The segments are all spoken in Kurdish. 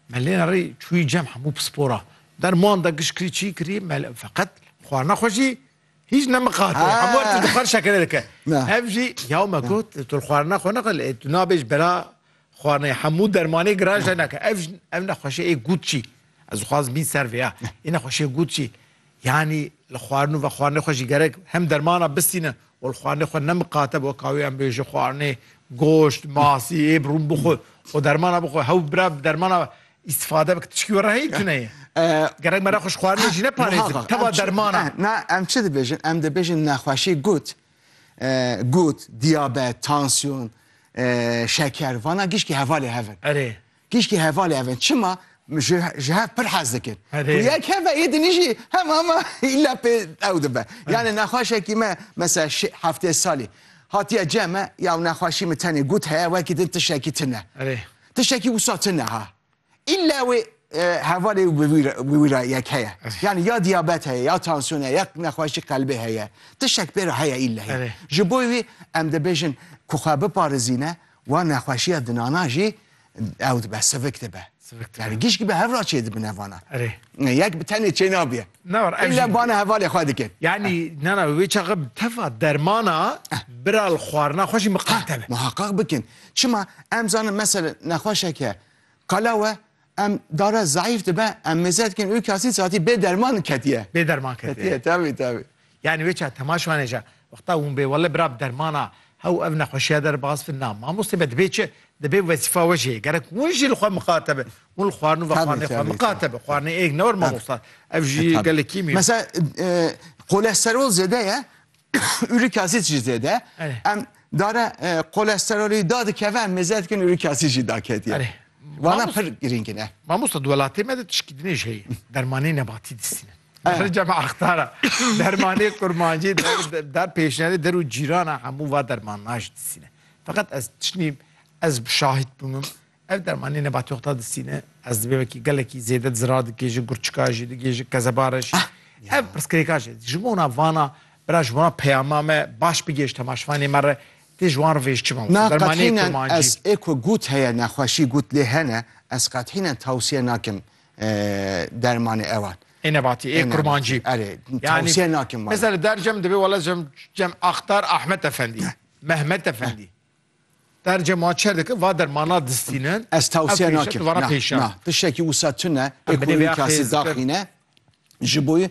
Me lê rê çûyî cem hemû pispora. Der manda giş kirî çî kirî me feqet xwarina xwe jî hîç nemiqate. Hemû her tim dixwar şekere dike. Ev jî yaw me got tu li xwarina xwe nexwe lê tu nabê ji bera xwarinê hemû dermanê giran jê neke. Ev jî ev nexweşê ê gut çî. Ez dixwazim bîn ser vê ya. Ê nexweşê gut çî. Yanî li xwarin û vexwarinê xwe jî gerek hem dermana bistîne û li xwarinê xwe nemiqate bi weka wê em bê ji xwarinê goşt, masî, êb, rûn bixwe û dermana bixwe. Hew bira bi dermana îstifade bike tişkî were heye tune ye. Gerek me re xwe ji xwarinê jî neparêzin teva dermana. Na em çi dibêjin? Em dibêjin nexweşî gut. Gut, diyabet, tansiyon, şeker vana gişkî hevalê hev in. Erê. Tîşkî hevalê ev in çima ji ji hev pir hez dikin. Erê. Ku yek hev e yê dinî jî hema hema îlla pê ew dibe. Yanê nexweşekî me mesela şê heftê salî hatiye cem me ya ew nexweşî min tenê got heye wekî din tiştekî tune. Erê. Tiştekî wisa tune ha. Îlla wê e, hevalê wî bi wî re- bi wî re yek heye. Yanî ya diyabet heye, ya tansiyon heye, ya nexweşî qelbê heye. Tiştek pê re heye îlla hê. Erê. Ji bo wî em dibêjin ku xwe biparêzîne Wan nexweşiya dinana jî ew dibe sivik dibe. Sivik dibe. Yani gişk be hevra çê dibin evana. Erê. Yek bi tenê çê nabiye. Ne var. Ev jî bana hevalê xwe dikin. Yani nana wê çaxa bi tefa dermana bira li xwarina xwe jî miqate be. Muhaqqaq bikin. Çima em zanin mesele nexweşeke qelawe Em dare zayîf dibe em mêze dikin û kasî satî bê derman ketiye. Bê derman ketiye. Ketiye tevî tevî. Yani wê çar temaş vane ca. Wexta hûn bê wele bira bi dermana hew ev nexweşiya der baz bin na. Mamostê me dibê çi? Dibê wezîfa we jê. Gerek hûn jî li xwe miqate bi. Hûn li xwarin û vexwarinê xwe miqate bi. Xwarinê êg ne wir mamosta. Ev jî gelekî mî. Mesela qole serol zêde ye. Uri Kasic jî zêde em dare kolesterolî da dikeve em mêze dikin Uri Kasic jî da ketiye. Wana pir girîng in e. Mamosta di welatê me de tişkî din jî heye. Dermanê nebatî distînin. Rêca me axtara. Dermanê kurmancî da pêşniyarê der û cîrana hemû va dermanan jî distîne. Feqet ez tiştî ez şahîd bûmim. Ev dermanê nebatîoxta di sîne ez dibê wekî gelekî zêde di zira dikê ji gurçika jî digê ji kezeba re jî. Ev pirsgirêka jê ji bona vana bira ji bona peyama me baş bigêj temaşvanê me re tê ji wan re vê ji çi mewsim dermanê kurmancî. Ez ê ku gut heye nexweşî gut lê hene ez qethînen tewsiye nakim dermanê ewan. Ê nebatî ê kurmancî. Erê tewsiye nakim wan. Mesela li dercem dibê wela cem axtar Ahmet Efendî, Mehmet Efendî. Derce ma çer dike va dermana distînin. Ez tewsiye nakim. Na, na. Tiştekî wisa tune ê ku wî kasî daxîne ji bo wî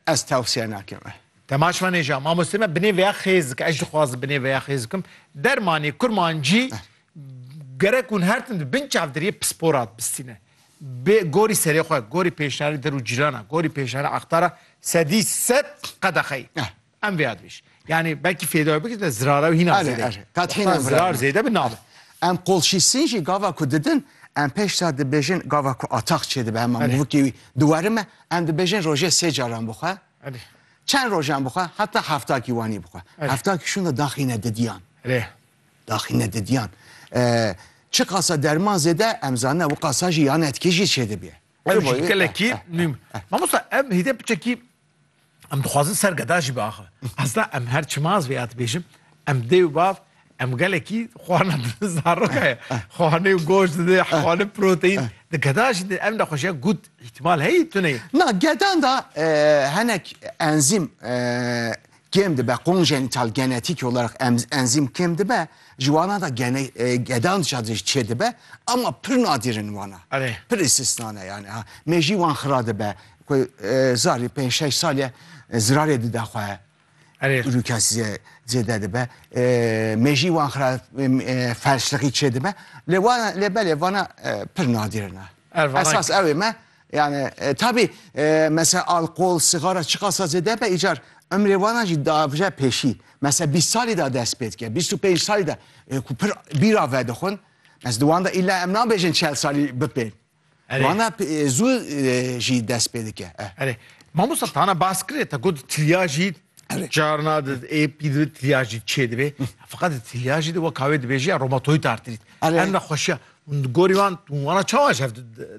ez tewsiye nakim. Temaş venê ja mamostê me binê veya xêz dike. Ez jî dixwazim binê veya xêz bikim. Dermanê kurmancî gerek hûn her tim di bin çavdiriyê pispora dibistîne. Bê gorî serê xwe, gorî pêşniyarê dir û cîrana, gorî pêşniyarê axtara sedî sed qedexeyî. Em vê advêj. Yani belkî fêdayê bikir de zirara wî hîna zêde. Erê, erê. Kat hîna zirar zêde bi navê. Em qolşîsîn jî gava ku didin, em pêş sar dibêjin gava ku atax çêdibe hema mûvikê wî diweri me, em dibêjin rojê sê caran bixwe. Erê. Çend rojan bixwe, heta hefta kîwanî bixwe. Hefta kîşûn de daxîne didiyan. Erê. Daxîne didiyan. Çi qasa derman zêde em zanine wi qasa jî yan etkê jî çêdibê. Gelekî, mamosta em hêdê piçekî Em dixwazin ser geda jî biaxivin. Esta em her çima ez vê ya dibêjim, em dê û bav em gelekî xwarina zaroka ye. Xwarina û goşt didê, xwarina û proteîn. Di geda jî di ev nexweşiya gut îhtimal heye tuneyê. Na, gedan de hinek enzîm kêm dibe konjenital genetîkî olarak em enzîm kêm dibe ji wana da gene gedan jî de çê dibe ama pir nadîr in wana Erê. pir îstisna ne yani ha me jî wan xira dibe ku e, zarî pênc şeş salî zirarê dide xwe Erê. rûkes zê- zêde dibe E, me jî wan xira e, felçliqî çê dibe lê wana lê belê vana e, pir nadîr in ha. Ervana- esas ew ê me Yani tabi mesela alkol, sîgara çiqasa zêde be îcar emrê wana jî davje pêşî. Mesela bîst salî da dest pê dike, bîst û pênc salî da ku pir bîra vedixwin. Mes di wan de îlla em nabêjin çel salî bipên. Erê. Wana zû jî dest pê dike. Erê. Mamosta tana bas kirê te got tilya jî Carna di ê pî di tilya jî çê dibê. Feqat di tilya jî de wek kavê dibêjî ya romatoid artrit. Em nexweşiya hûn di gorî wan hûn wana çawa ji hev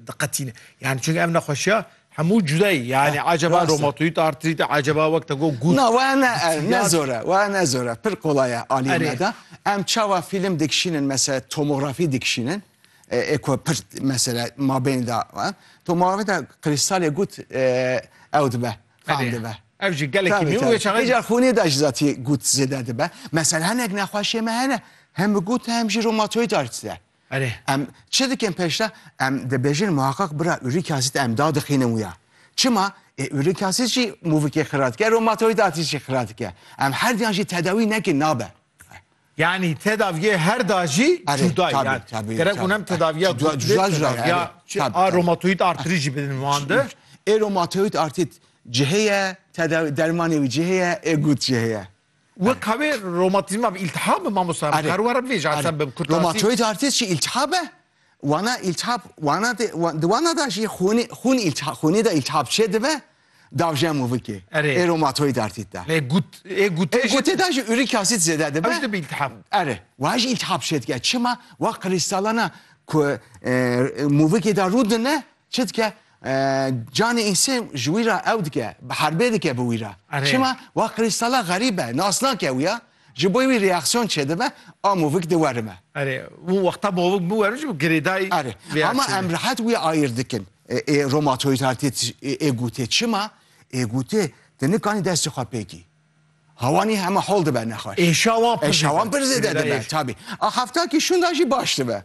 diqetîne. Yani çünkü em nexweşiya hemû cudayî yani ah, acaba romatoid artrit e acaba wek te got gut. Na we ne ne zor e we ne zor e pir kolay e alî me de. Em çawa fîlm dikişînin mesela tomografî dikişînin. E, e ku pir mesela mabênda e. tomografî de kristalê gut e, ew dibe. Fam dibe. Ev jî gelekî nû wê çaxê. Hêja xûnê de ji zatî gut zêde dibe. Mesela hinek nexweşiyê me hene hem bi gut e hem jî rheumatoid arthritis de. Erê. Em çi dikin pêşde? Em dibêjin muheqeq bira uric acid em dadixînin wî ya. Çima? Ê uric acid jî mûvikê xira dike, rheumatoid arthritis jî xira dike. Em her duyan jî tedawî nekin nabe. Yanî tedaviyê her da jî cuda ye. Yani gerek hûn hem tedaviya cuda jî ya a romatoid artrit jî bidin wan de. Ê romatoid artrit cihê ye, dermanê wî cihê ye, ê gut cihê ye. Weka wê romatizma bi îltihab e mamoste? Em dikarin were bivêjin. Romatoid artrit jî îltihab e? Wana îltihap wana de di wana da jî xûnê xûn îltihap xûnê da îltihap çê dibe davje mûvikê Erê. ê romatoîd artît da. Lê gut ê gutê Ê jî gotê da jî uric asid zêde dibe. ew dibe îltihap. Erê wa jî îltihap çê dike çima wa krîstalana ku e, mûvikê da rû dine çi dike e, canê însê ji wî ra ew dike bi herbê dike bi wî ra. Erê. Çima wa krîstala xerîb e nas nake wî ya. Ji bo wî reaksiyon çêdibe a movik di werime. Erê, û wexta movik biwerim jî girêdayî Erê, ama em rehet wî ayîr dikin. Ê romatoid artît ê gotê çima? Ê gotê tu nikanî destê xwe pê kî. Hawanî heme hol dibe nexweş. Êşa wan pir zêde dibe. Êşa wan pir zêde dibe tabî. A hefta kî şûnda jî baş dibe.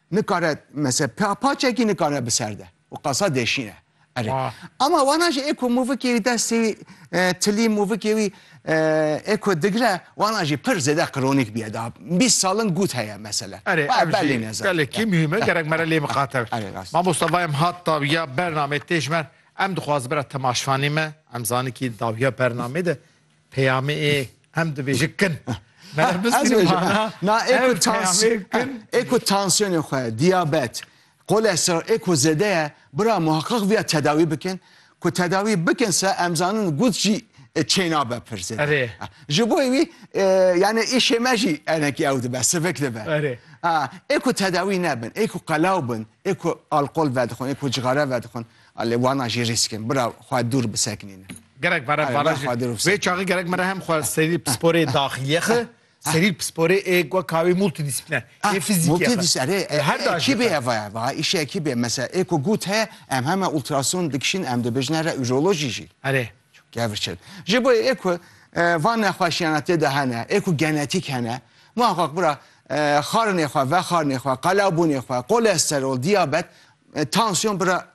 Nikare mesela pa paçekî nikare bi ser de û qasa deşîne. Erê. Ama wana jî ê ku mûvikê wî destê wî tilî mûvikê wî ê ku digre wana jî pir zêde qronîk bîye da bîst salin gut heye mesela. Erê ev jî gelekî muhîm e gerek mere lê miqate be. Erê rast. Mamosta va em hat dawiya bernamê tê ji me em dixwazin bira temaşvanê me em zanîn kî dawiya bernamê de Peyamê ê em divê ji kin. Ê ku tansiyonê xwe, diyabet, kolesterol ê ku zêde ye, bira muheqiq viya tedawî bikin. Ku tedawî bikin se em zanin gut jî çênabe pir zêde. Ji bo wî yani îşê me jî enekî ew dibe, sivik dibe. Ê ku tedawî nebin, ê ku qelaw bin, ê ku alkol vedixwin, ê ku cixare vedixwin. A lê wana jî rîsk in bira xwe dûr bisekinîne. Gerek vere vana jî. Vê çaxê gerek mere hem xwe serî pisporê daxilîye xi, serî pisporê ê wek ka wê multidîsîplîne ê fîzîkîye xi. Erê her da jî. Ekîbê heve ya va îşê ekîbê mesela ê ku gût heye em heme ultrason dikişîn em dibêjine re urolojî jî. Erê. Gevr çin. Ji bo ê ku van nexweşîyana tê de hene ê ku genetîk hene muheqeq bira xarinê xwe vexarinê xwe qelabûnê xwe kolesterol diyabet E, tansiyon bira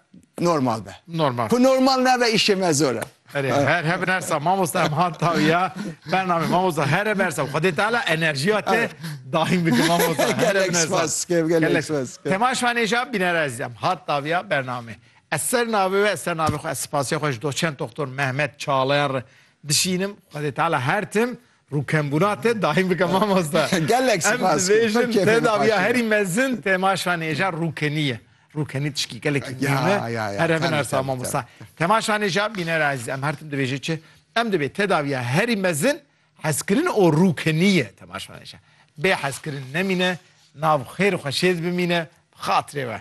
normal be. Normal. Ku normal nebe işê me zor e. Erê, her hebin her sa mamosta em han tawiya bername mamosta her hebin her sa Xwedê Teala enerjiya te daim bike mamosta. Her Gelek hebin her sa. spas, gelek Gelek. spas. Tema şanêja bînera ezîzem hat tawiya bername. Ez ser navê we ez ser navê xwe ez spasiya xwe ji doçent doktor Mehmet Çalayan re dişînim. Xwedê Teala her tim Rû kembûna te dahîn bike mamoste. Gelek spas. Em dibêjin tedaviya herî mezin temaşa nêja rûkenî ye. Rûkenî tişkî gelekî mihîm e. Here bin ersa mamoste. Temaşa nêja bîner ezîz em her tim dibêje çi? Em dibê tedaviya herî mezin hezkirin û rûkenî ye temaşa nêja. Bê hezkirin nemîne nav xêr û xweşêz bimîne bi xatirê we.